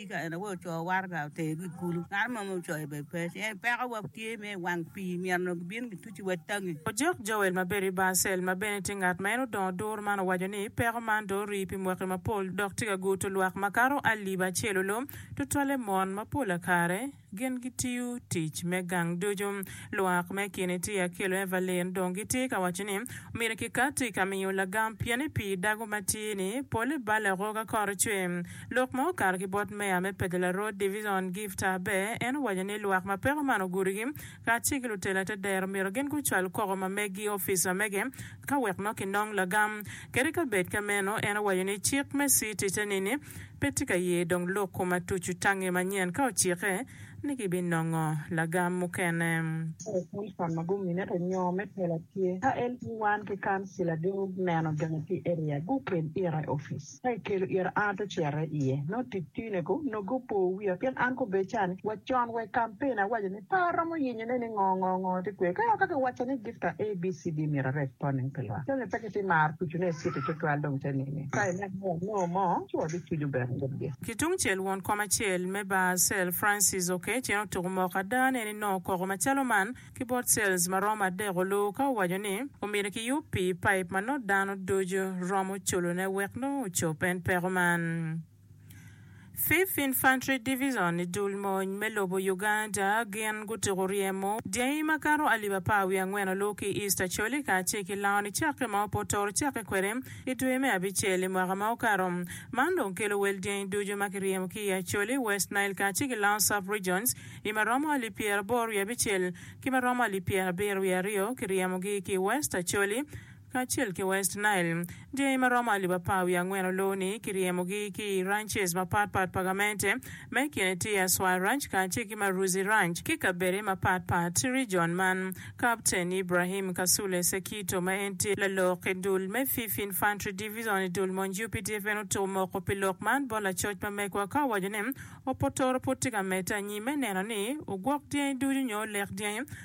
Tika en aye ocoo waraga oter ki i kulu? Ngat mo ma ocoo bene pe, ci en pekowa tye me i wang pii, myero gibin gituc wa i tangi. Ojok Joel ma bedo i Barcel ma bene tye ngat ma en odongo duru man owaco ni, Peko man dong orii pi mwaki mapol dok tye ka guto lwak makato alip acel olom, tutwalle mon, ma pol kare. Gin gitiyo tic me gang ducu. Lwak me kin i Tia ki Luevelyn dong gitye ka waco ni myero kikat i ka miyo lagam pien i pii dago ma tye ni pole bale oko ka kore cwe. Lok ma okato ki bot meya me Pedler Road Division Gift Abe en owaco ni lwak ma peko man ogurigi kacel ki lutela te dero myero gin gucwal koko ma meggi opic ma mege ka wek nongo kinong lagam kede ka bed ka meno en owaco ni cik me city te nini Pe tye ka ye dong lok kom atucu tange manyen ka ocike ni ki bi nongo lagam mukene. Tere Thompson ma gumine to nyo me tela tye ka en ki wan ki kancila do neno donyo ki area gu kel ira i office ka ki kelo ira an ato cere iye nongo tic tine ko nongo gupo wiya pien an ko be can wa con wa i campaign awaco ni Pe waromo yenyone ni ngo ngo ngo tye kwer. Ka waka kiwaco ni gift a ABCD myero areg poning pi lwak. Jami pe giti maro tucu ne city tutwal dong te nini. Ka ineno ni wanongo mo, ci wabi tucu bene but gi. Ki tungcel won kom acel me Basel, Francis okec en otuku moko ada ne ni nongo koko macalo man ki bot cells maromo adek oluu ka owaco ni omyero kiyub pi pipe ma nongo dano ducu romo culone wek nongo ocop en peko man. Fifth Infantry Division i dul mony me lobo Uganda gin gutuko ryemo dyangi makato alip apar wiye angwen olur ki i East Acholi kacel ki lango nicakke ma opotoro cakke kwede i dwe me abicel i mwaka ma okato. Man dong kelo wel dyangi ducu ma kiryemo ki i Acholi, West Nile kacel ki Lango Sub-Regions i ma romo alip pyeraboro wiye abicel ki ma romo alip pyerabiro wiye aryo kiryemogi ki i West Acholi, kacel ki West Nile. Jami ma romo alip apar wiye angwen oluwu ni kiryemogi ki i ranches mapat pat pa gamente, ma i kine tye Aswai Ranch kacel ki Maruzi Ranch ki kabede mapat pat i rijon man. Kapten Ibrahim Kasule Sekito ma en tye lalok i dul me Fifth Infantry Division i dul monj updf en otuko moko pi lok man bot lacoc ma megwa ka owaco ni Opotoro pud tye ka medde anyim me neno ni ogwok dyangi ducu nyo olek dyangi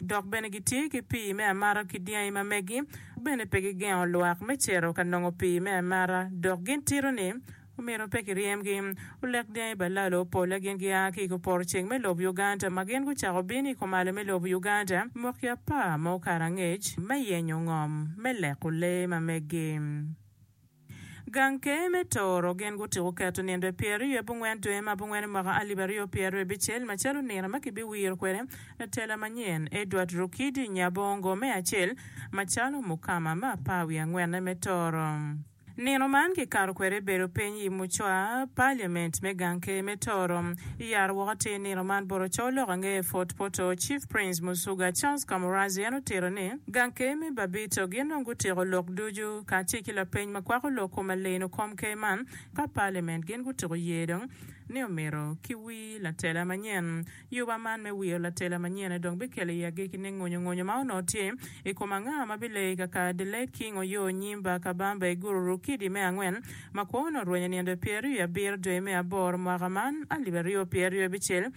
Dok bene gitye ki pii me amata ki dyangi ma megi, bene pe gigengo lwak me cito ka nongo pii me amata, dok gin tito ni, Omyero pe kiryemgi. Olek dyangi pa lalo polle gin gia ki i koporo ceng me lobo Uganda ma gin gucako bino i komalo me lobo Uganda mwaki apar ma okato angec me yenyo ngom me leko lee ma megi. Gang Ker me Toro gin gutiko keto nindwe pyeraryo abongwen dwe ma abongwen i mwaka alip aryo pyeraryo abicel macalo nino ma kibiwiro kwede lutela manyen Edward Rukidi Nyabongo me acel macalo mukama me apar wiye angwenne me Toro. Nino man kikato kwede bedo piny i mucwa Parliament me Gang Ker me Toro. Iyaro woko atir nino man bot ocoo lok angeyo Fort Portal Chief Prince Musuga Charles Kamurazzi en otito ni, Gang Ker me Babito gin dong gutiko lok ducu kacel ki lapeny ma kwako lok kom aleno kom ker man ka Parliament gin gutuko ye dong ni omito ki wir latela manyen. Yuba man me wiro latela manyen aye dong bikelo iye agikki ne ngonyo ngonyo ma onongo tye i kom anga ma bileyo i kakare The late King Oyoo Onyimba Kabamba Iguru Rukidi me angwen ma kwo onongo rwenyo nindo i pyeraryo i abiro dwe me aboro mwaka man alip aryo pyeraryo bicel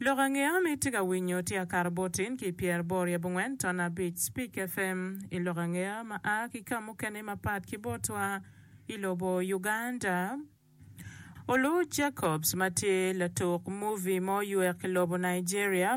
Lok ange an itye ka winyo tye akato bot in ki pyer bor i abongwen ton abic Speak FM i lok ange ma a ki ka mukene mapat ki botwa i lobo Uganda. Olu Jacobs ma tye latuk movie mo oywek i lobo Nigeria.